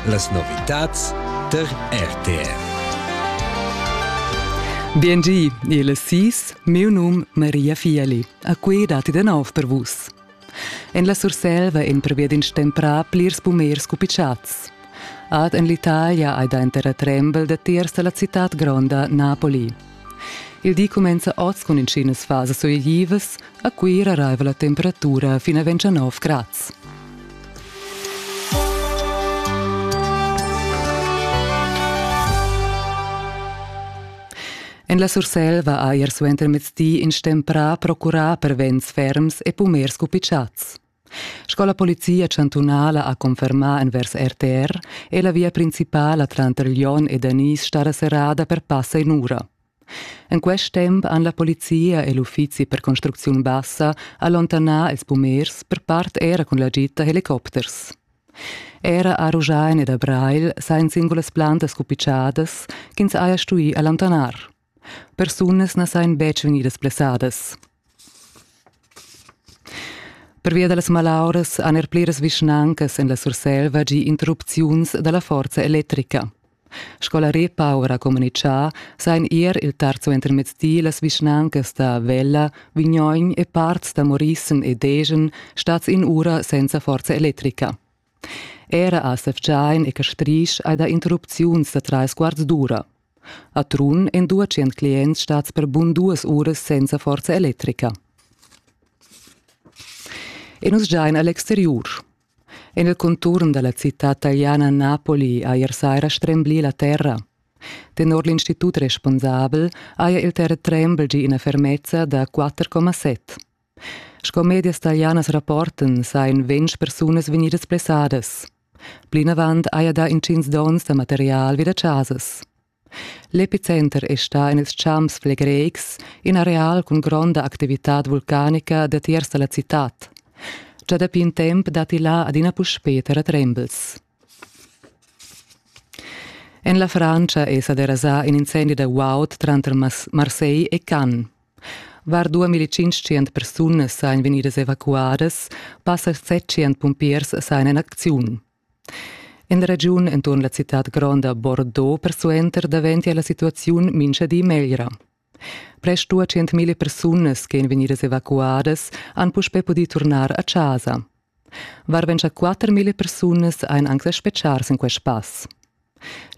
Las novitads tar RTR. Biengi, il sis, meu num Maria Fieli. A quei dati de nov per vus. En la Surselva en prevedin stemprà plirs pumers cupicciats. Ad en l'Italia hai da entera trembel de tiers la città gronda Napoli. Il di cumenza oz cun intginas fasas suleglivas. A Cuira arriva la temperatura fin a 29 grads. En la Surselva ha ier suentermezdi in stemprà procurà per vents ferms e pumers cupitschats. Sco la polizia chantunala ha confermà envers RTR è la via principala tranter Lyon e Danis stada serrada per passa in'ura. En quest temp han la polizia e l'uffizi per construcziun bassa allontanà ils pumers per part era cun l'agit da helicopters. Era a Ruschein ed a Breil sajan singulas plantas cupitschadas ch'ins haja stuì allontanar. Persunas na sajan betg vegnidas blessadas. Pervia da las malauras han er pliras vischnancas en la Surselva gì interrupziuns da la forza electrica. Sco la Repower ha communitgà, sajan ier il tarzuentermezdi las vischnancas da Vella, Vignogn e parts da Morissen e Degen stads in ura senza forza electrica. Era a Sevgein e Castrisch ei da interrupziuns da treis quarts d'ura. A Trun ein dua tschient clients stats per bun duas uras senza forza electrica. E nus giain a l'exteriur. En il conturn dalla citad italiana Napoli ha ier saira stremblì la terra. Tenor l'institut responsabel haja il terratrembel gì ina fermezza da 4,7. Sco medias talianas rapportan sajan ventg persunas vegnidas blessadas. Plinavant haja dà intgins donns da material vi da chasas. L'epicenter è stà en ils champs flegreics, in areal cun gronda activitad vulcanica datiers da la citad. Già dapi in temp datti là adina puspè terratrembels. En la Francia è sa derasà in incendi da guaud tranter Marseille e Cannes. Var 2500 persunas sajan vegnidas evacuadas, passa 700 pumpiers sajan en acziun. En regiun enturn la citad gronda Bordeaux persuenter daventia la situaziun mincha di meglra. Prest 200.000 persunas che èn vegnidas evacuadas han puspè pudì turnar a chasa. Var 24.000 persunas ein anc da spetgar sin quest pass.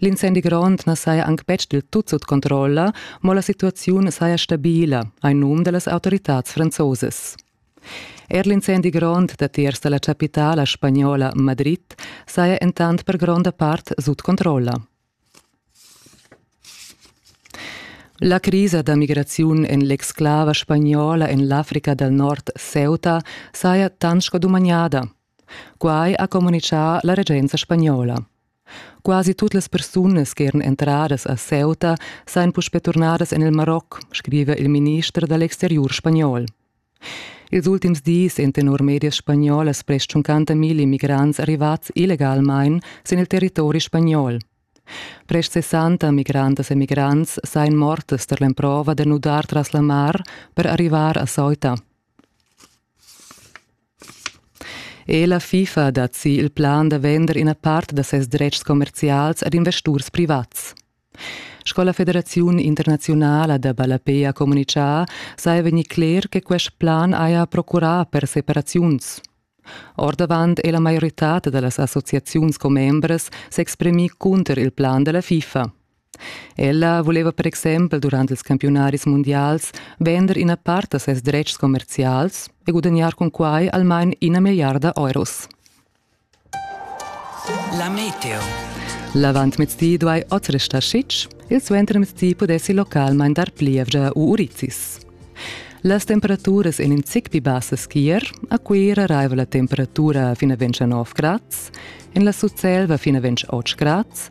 L'incendi grond na saja anc betg dil tut sut controlla, mo la situaziun saja stabila, ein num dallas autoritads franzosas. Er l'incendi grond datiers dalla capitala spagnola Madrid saja entant per gronda part sut controlla. La crisa da migraziun en l'exclava spagnola en l'Africa dal Nord Ceuta saja tant sco dumagnada. Quai ha communitgà la regenza spagnola. Quasi tut las persunas che eran entradas a Ceuta sajan puspè turnadas en il Maroc, scriva il minister da l'exteriur spagnol. Ils ultims dis èn tenor medias spagnolas prest 50.000 immigrants arrivads illegalmain sin il territori spagnol. Prest 60 migrantas e migrants sajan mortas tar l'emprova da nudar tras la mar per arrivar a Ceuta. Ella FIFA dat si il plan da vender ina part da ses dretgs commerzials ad investurs privats. Sco la Federaziun internaziunala da ballapei ha communitgà, saja vegnì cler che quest plan haja procurà per separaziuns. Ordavant è la maioritad da las associaziuns commembras s'exprimì cunter il plan da la FIFA. Ella voleva per exempel durant ils campiunaris mundials vender ina part da ses dretgs commerzials e gudagnar cun quai almain ina milliarda euros. La meteo. L'avantmezdi duai oz restar sitg, il suentermezdi pudessi localmain dar plievgia u urizis. Las temperaturas en in zic pli bassas chier, a Cuira raiva la temperatura fin a 29 grads, en la Sutselva fin a 28 grads,